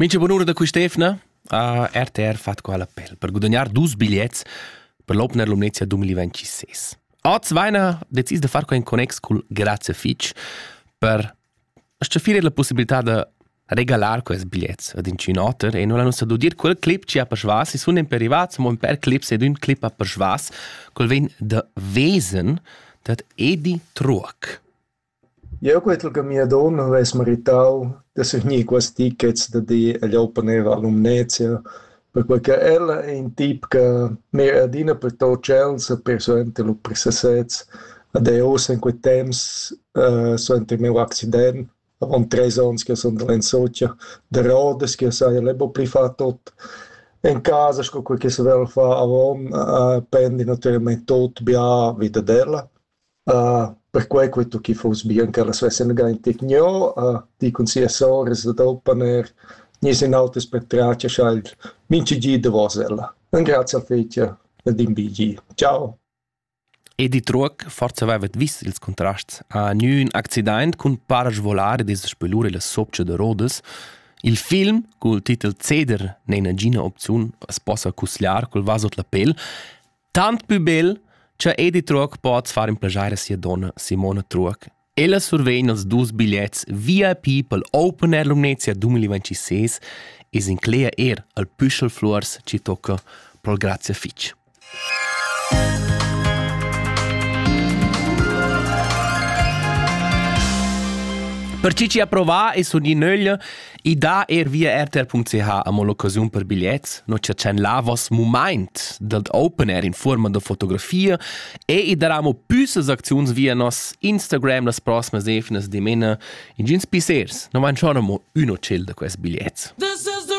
Mincha bunura da quist'efna ha RTR fat qua l'appel per gudagnar dus bigliets per l'Opener Lumnezia 2026. Oz vaina decis da far quai in connex cul Grazie Fitch per staffirer la possibilità da regalar quels bigliets ad inchün oter e non l'han ussa d'udir quel clip chi ha persvas, i sun imper rivats, mo imper clips ed ün clip ha persvas, col vegn da Wesen dad Edi Truoc. Jeu quei ch'el gamiadon havess meritau da surgnir quels tickets da dir egl open air a Lumnezia, perquei che ella è in tip che mira adina pertut tschels e persuenter lu per sesez. Ed er ussa in quei temps suenter il meu accident, avon treis onns ch'jeu sun andà en Sotscha, da rodas ch'jeu sai el è buca pli far tut. En casa sco quei che se völ far avon pendi natüralmaing tut bia vi dad ella. perquai che tu chi fuss bien ch'ellas vessen gainti gnö di cun sia sour es da oppaner, gniss in autas patratgs a el mincha gi davos ella. Ingrazcha fich ed imbiigi. Ciao! Edi Truoc forsa avevet vis ils contrasts a gnün accidaint cun parasvolar ed es spelur illa sopcha da Rodas. Il film cul titel Ceder n'è nagina opziun as possa cusgliar col vas ot la pel Tant pü bel cha Edi Truoc poz far in plajair a sia donna Simona Truoc. Ella survegn els dus bigliets VIP pel Open Air Lumnezia 2026 e s'inclegia eir al Püschel Fluors chi tocca pro'l Grazia fich. Per chi ci ha provà e sun in nöglia I dà eir via rtr.ch amo l'occasiun per bigliets. No chatschan là vos mumaint dad open air in fuorma da fotografia e i darà amo püssas acziuns via nos Instagram las prossimas efnas dimena. Ingüns pissers, no manchon amo ün ocel da quels bigliets. This is the